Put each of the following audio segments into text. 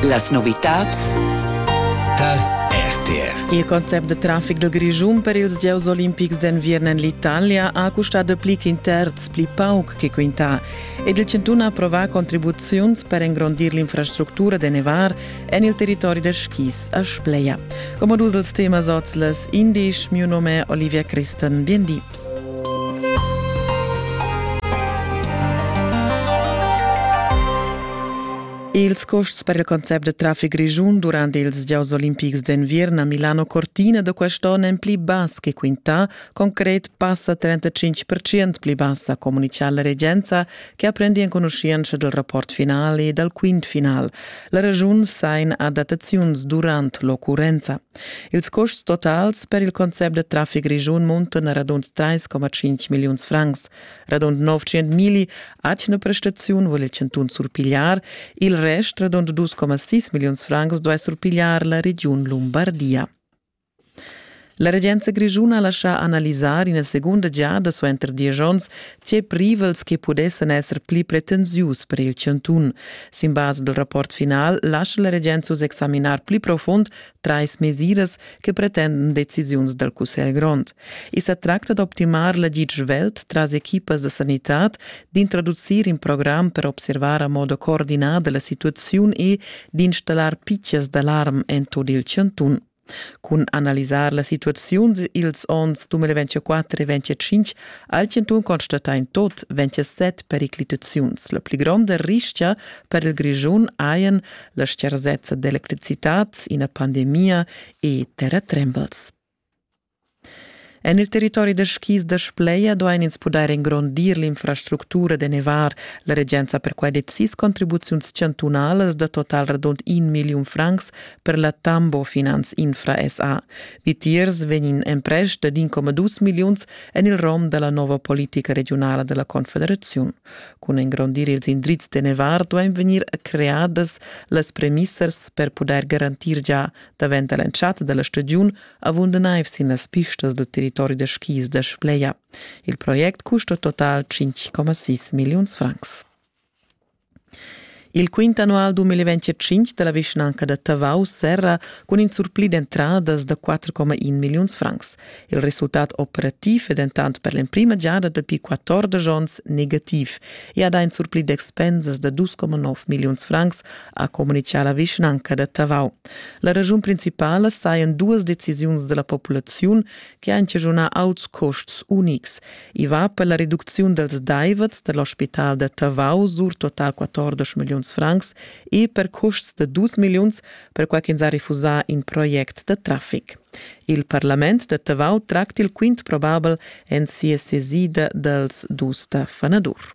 Las novitads tar RTR. Il concept de trafic del Grischun per ils gieus olimpics d'enviern en l'Italia ha custado pli ch'in terz pli pauc che quintà ed il chantun ha approvà contribuziuns per engrondir l'infrastructura de nevar en il territori de skis a Spleia. Como dus els temas oz les indisch, miu nome Olivia Christen, bien di. Ils custs per il concept da traffic grischun durant ils gieus olimpics d'enviern a Milano Cortina da quest onn èn pli bass che quintà, concret passa 35% pli bassa, communitga la regenza che ha prendi enconuschientscha dal rapport final e dal quint final. La ragiun sain adattaziuns durant l'occurrenza. Ils custs totals per il concept da traffic grischun muntan a radund 3,5 milliuns francs. Radund 900 mili atgna prestaziun vul il chantun surpigliar, il rest, radund 2,6 milliuns francs, duai surpigliar la regiun Lumbardia. La regenza grischuna ha lascià analisar ina segunda giada suenter diesch onns tge privels che pudessan esser pli pretensius per il chantun. Sin basa dal rapport final lascha la regenza uss examinar pli profund trais mesiras che pretenden decisiuns dal Cussegl grond. I sa tracta d'optimar l'agid svelt tras equipas da sanitad, d'introducir in program per observar a modo coordinada la situaziun e d'installar pitschas d'alarm en tut il chantun. Cun analisar la situaziun ils onns 2024 e 2025 ha il Chantun constatà in tot 27 periclitaziuns. La pli gronda rischia per il Grischun hajan la scharsezza d'electricitat, ina pandemia e terratrembels. En il territori da skis da Spleia duain ins pudair engrondir l'infrastructura da nevar. La regenza per quai decis contribuziuns chantunalas da total radund in milliun francs per la Tambo Finanz Infra SA. Vitiers vegnin emprest ad 1,2 milliuns en il rom da la nova politica regiunala da la Confederaziun. Cun engrondir ils indrizs de Nevar duein vegnir creadas las premissas per pudair garantir gia davent dall'entschatta dalla stagiun avunda neiv sin las pistas dil territori da skis da Spleia. Il project custa total 5,6 milliuns francs. Il quint annual 2025 da la vischnanca da Tavau serra cun in surpli d'entradas da 4,1 milliuns francs. Il resultat operativ è dentant per l'emprima giada dapi 14 onns negativ e ha dà in surpli d'expensas da 2,9 milliuns francs, ha communitgà la vischnanca da Tavau. La raschun principala sajan duas decisiuns da la populaziun che han chaschunà auts custs unics. I va per la reducziun dals daivets da l'ospital da Tavau sur total 14 milliuns francs e per custs da 2 milliuns perquai ch'ins ha refusà in project da traffic. Il parlament da Tavau tracti il quint probabel en sia sesida dals dus da fanadur.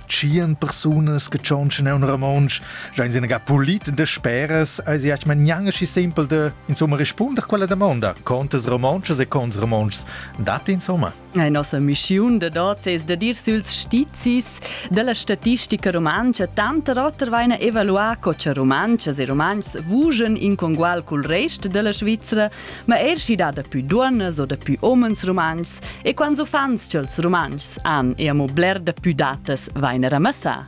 Tschien persunas che tschontschen aun romontsch, jain sina ga pulit de speras, eis iach man gnangaschi simpel de, insomma, rispunder quella domanda, contas romontschas e cons romontschs, dat insomma? La nossa missiun de dot es de dir süls stizis della statistica rumantscha tanter oter vaina evaluà co cha rumantschas e rumantschs vugen in congual cul rest della Svizzera ma eir schi dà dapü duonnas o dapü homens rumantschs e quants uffants cha'ls Rumantschs han e amo bler dapü datas vain er amassà.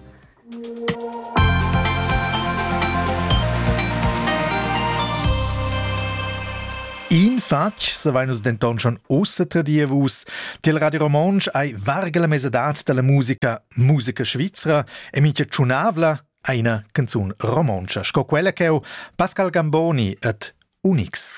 In fatg savain nus denton schon ussa tradir vus. Tiel Radio Romontsch ei varga la mesadad dalla musica musica svizra e mincha tschunavla Eine canzun romontscha sco quella ch'eu, Pascal Gamboni ed Unix.